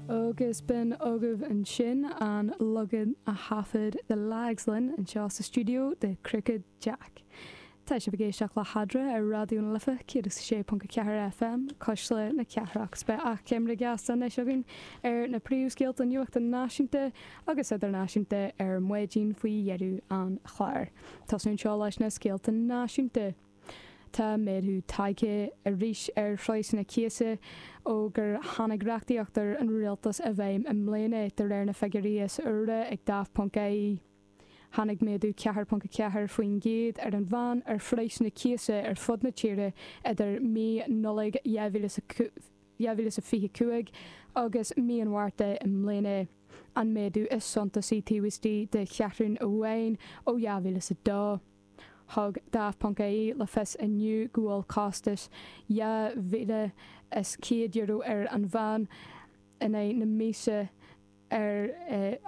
agus b'in agaibh ansin an lagadh a thaifead le Lagslann anseo sa stiúideo de Crooked Jack. Tá sibh ag éisteacht le hAdhmhaidin ar Raidió na Life 106.4 FM, Cuisle na Cathrach, 's beidh achoimre dheas anois againn ar na príomhscéalta nuachta náisiúnta agus idirnáisiúnta ar maidín faoi dheireadh an chláir. Tosnú anseo leis na scéalta náisiúnta. Tá méadú tagtha arís ar phraghsanna cíosa ó gur tháinig reachtaíocht úr an rialtas i bhfeidhm i mbliana, de réir na figiúirí is úire ag Daft ponc ie. Tháinig méadú 4.4% ar an meán ar phraghsanna cíosa ar fud na tíre idir mí Nollag 2025 agus mí an Mhárta i mbliana, an méadú is suntasaí taobh istigh de cheathrú amháin ó 2002. Thug Daft.ie le fios inniu go bhfuil costas €2,100 ar an meán in aghaidh na míosa ar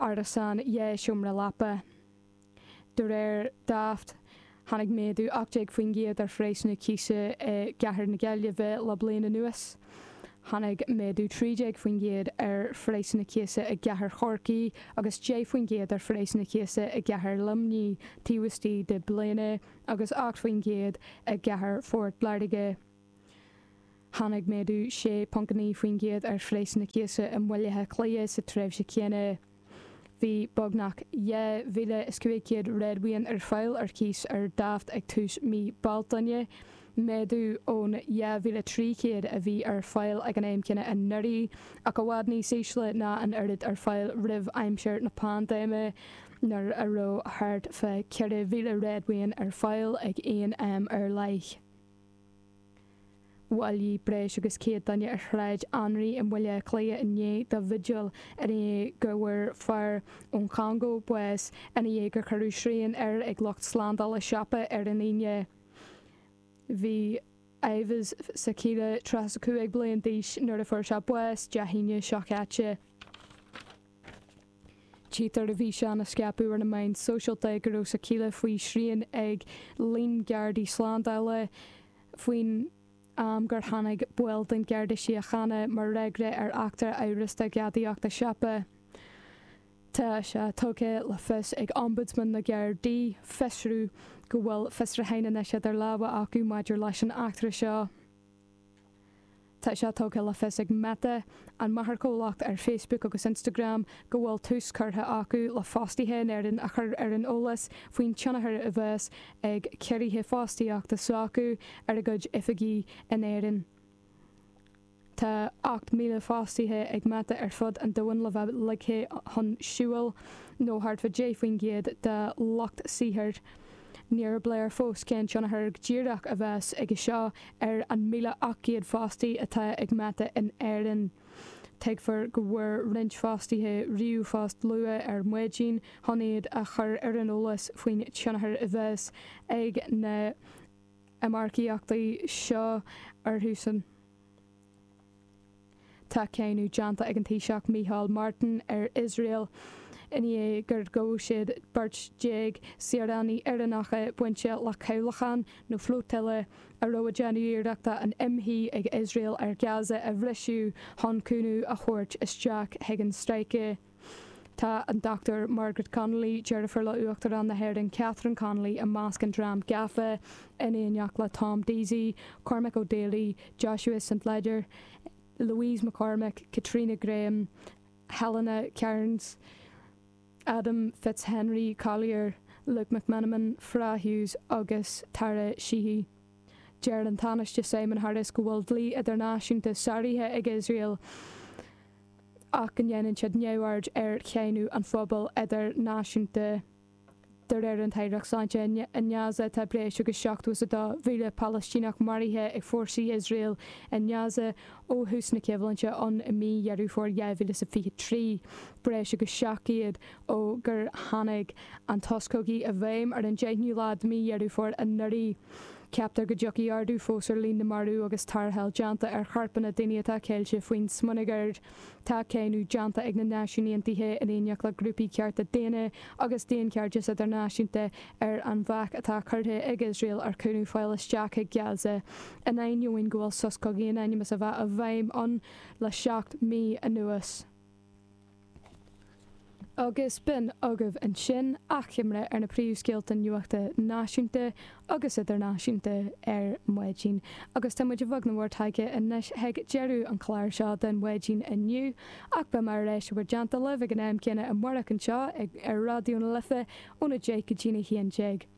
árasán dhá sheomra leapa. De réir Daft, tháinig méadú 18% ar phraghsanna cíosa i gcathair na Gaillimhe le bliain anuas. Tháinig méadú 13% ar phraghsanna cíosa i gcathair Chorcaí agus 10 faoin gcéad ar phraghsanna cíosa i gcathair Luimnigh taobh istigh de bhliain agus 8 faoin gcéad i gcathair Phort Láirge. Tháinig méadú 6.9 faoin gcéad ar phraghsanna cíosa i mBaile Átha Cliath sa tréimhse chéanna. Bhí beagnach 2,500 réadmhaoin ar fáil ar cíos ar Daft ag tús mí Bealtaine, méadú ón 2,300 a bhí ar fáil ag an am céanna anuraidh, ach i bhfad níos ísle ná an oiread ar fáil roimh aimsir na paindéime, nuair a raibh thart fá 4,000 réadmhaoin ar fáil ag aon am ar leith. Bhailigh breis agus céad duine ar Shráid Anraí i mBaile Átha Cliath inné do bhigil i ndiaidh go bhfuair fear ón Chongó bás i ndiaidh gur cuireadh srian air ag lucht slándála siopa ar an Aoine. Bhí Yves Sakila tríocha is cúig bliain d'aois nuair a fuair sé bás Dé hAoine seo caite. Tchítear i bhfíseán a scaipeadh ar na meáin sóisialta go raibh Sakila faoi shrian ag líon gardaí slándála faoin am gur tháinig baill den Gharda Síochána mar fhreagra ar eachtra amhrasta ghadaíochta siopa. Tá sé tugtha le fios ag Ombudsman na nGardaí, Fiosrú, go bhfuil fiosrúchán anois idir lámha acu maidir leis an eachtra seo. Tá sé tugtha le fios ag Meta, an máthairchomhlacht ar Facebook agus Instagram, go bhfuil tús curtha acu le fostaithe in Éirinn a chur ar an eolas faoin tionchar a bheas ag ciorruithe fostaíochta s'acu ar a gcuid oifigí in Éirinn. Tá 8,000 fostaithe de chuid Meta ar fud an domhain le bheith ligthe chun siúil, nó thart fá 10% dá lucht saothair. Níorbh léir fós cén tionchar go díreach a bheas aige seo ar an 1,800 fostaí atá ag Meta in Éirinn. Tuigtear go bhfuair roinnt fostaithe ríomhphost luath ar maidin chun iad a chur ar an eolas faoin tionchar a bheas ag na hiomarcaíochtaí seo orthusan. Tá cáineadh déanta ag an Taoiseach Micheál Martin ar Iosrael i ndiaidh gur ghabh siad beirt déag saoránaigh Éireannacha bainte le cabhlachán nó flotilla a raibh ag déanamh iarrachta an imshuí ag Iosrael ar Gaza a bhriseadh chun cúnamh a thabhairt isteach chuig an stráice. Tá an Dr Margaret Connolly, deirfiúr le Uachtarán na hÉireann, Catherine Connolly, i measc an dream gafa, in éineacht le Tom Deasy, Cormac O'Daly, Joshua St Leger, Louise McCormack, Caitríona Graham, Helena Kearns, Adam Fitzhenry Collier, Luke McMenamin, Fra Hughes agus Tara Sheehy. Deir an Tánaiste Simon Harris go bhfuil dlí idirnáisiúnta sáraithe ag Iosrael. ach go ndéanann siad neamhaird ar cháineadh an phobail idirnáisiúnta de réir an Aireacht Sláinte i nGaza. Tá breis agus 72,000 Palaistíneach maraithe ag fórsaí Iosrael i nGaza ó thús na coimhlinte ann i mí Dheireadh Fómhair 2023, breis agus 700 ó gur tháinig an sos cogaidh i bhfeidhm ar an deichiú lá de mhí Dheireadh Fómhair anuraidh. Ceaptar go dtiocfaidh ardú fós ar líon na marú agus tarrtháil déanta ar chorpanna daoine atá ceilte faoin smionagar. Tá cáineadh déanta ag na Náisiúin Aontaithe in éineacht le grúpaí cearta daonna agus daonchairdeas idirnáisiúnta ar an bhac atá curtha ag Iosrael ar chúnamh fáil isteach chuig Gaza in ainneoin go bhfuil sos cogaidh in ainm is a bheith i bhfeidhm ann le seacht mí anuas. agus b'in agaibh ansin athchoimre ar na príomhscéalta nuachta náisiúnta agus idirnáisiúnta ar maidin, agus tá muid ag bogadh i bhur dtreo anois chuig deireadh an chláir seo den mhaidin inniu, ach beimid ar ais i bhur dteannta libh ag an am céanna amárach anseo ar Raidió na Life, óna deich go dtí a haon déag.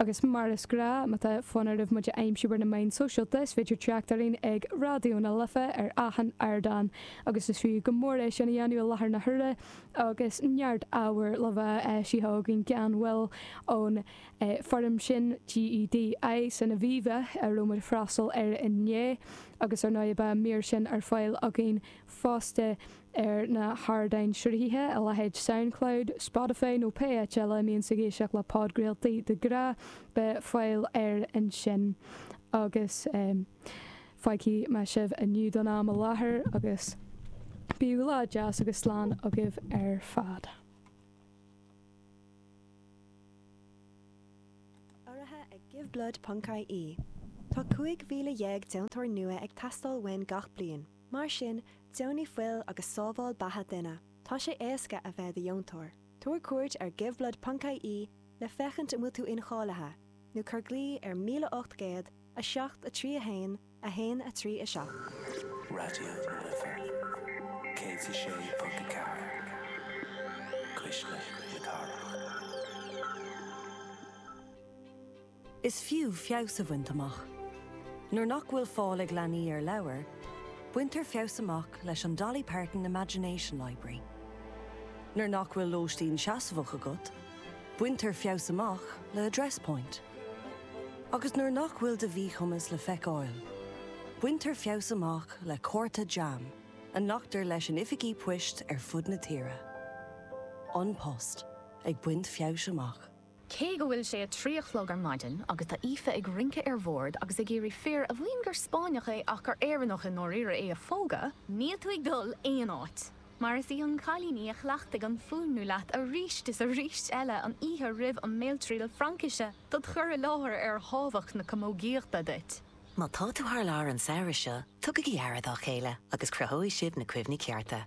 Agus mar is gnách má tá fonn oraibh muid a aimsiú ar na meáin sóisialta, is féidir teacht orainn ag Raidió na Life ar achan ardán agus is fiú go mór é sin a dhéanamh i láthair na huaire agus neart ábhair le bheith á sítheadh againn gan mhoill ón fóram sin GEDI san Aviva a raibh muid ag freastal air inné agus ar ndóigh beidh an mír sin ar fáil againn fosta ar na hardáin sruthaithe, a leithéid Soundcloud, Spotify nó pé áit eile a mbíonn sibh ag éisteacht le podchraoltaí de ghnáth, beidh fáil air ansin. Agus fágfaidh mé sibh inniu don am i láthair agus bíodh lá deas agus slán agaibh ar fad. Urraithe ag Give Blood Ponc IE Tá 15,000 deontóir nua ag teastáil uainn gach bliain. Mar sin, deonaigh fuil agus sábháil beatha duine. Tá sé éasca a bheith i do dheontóir. Tabhair cuairt ar giveblood.ie le féachaint an bhfuil tú incháilithe, nó cuir glao ar 1800 731 137. Raidió na Life 106.4 Cuisle na Cathrach. Is fiú feabhas a bhaint amach. Nuair nach bhfuil fáil ag leanaí ar leabhair, baintear feabhas amach leis an Dolly Parton Imagination Library. Nuair nach bhfuil lóistín seasmhach agat, baintear feabhas amach le Address Point. Agus nuair nach bhfuil do mhíchumas le feiceáil, baintear feabhas amach le cárta JAM a nglactar leis in oifigí poist ar fud na tíre. An Post ag baint feabhais amach. Cé go bhfuil sé a trí a chlog ar maidin agus tá Aoife ag rince ar bhord agus ag iarraidh fir a mhaíonn gur Spáinneach é ach gur Éireannach i ndáiríre é a phógadh, níl tú ag dul aon áit, mar is í an cailín í a chleachtaigh an fuaimniú leat arís is arís eile an oíche roimh an mbéaltriail Fraincise do do chur i láthair ar thábhacht na camógaíochta duit. Má tá tú thar lear an samhradh seo, tugaigí aire dá chéile agus cruthóidh sibh na cuimhní cearta.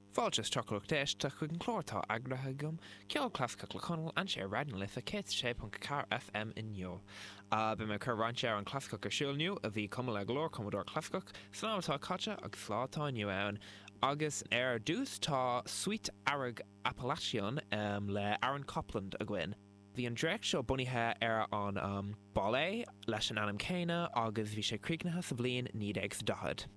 Fáilte isteach a lucht éiste chuig an chlár atá eagraithe agam, Ceol Clasaiceach le Conall, anseo ar Raidió na Life 106.4 FM inniu. Beidh mé ag cur roinnt amhrán clasaiceach ar siúl inniu a bhí cumtha le go leor cumadóir clasaiceach san am atá caite agus sa lá atá inniu ann agus ar dtús tá Suite Earrach Appalachian le Aaron Copland againn. Bhí an dréacht seo bunaithe ar an ballet leis an ainm céanna agus bhí sé críochnaithe sa bhliain 1940.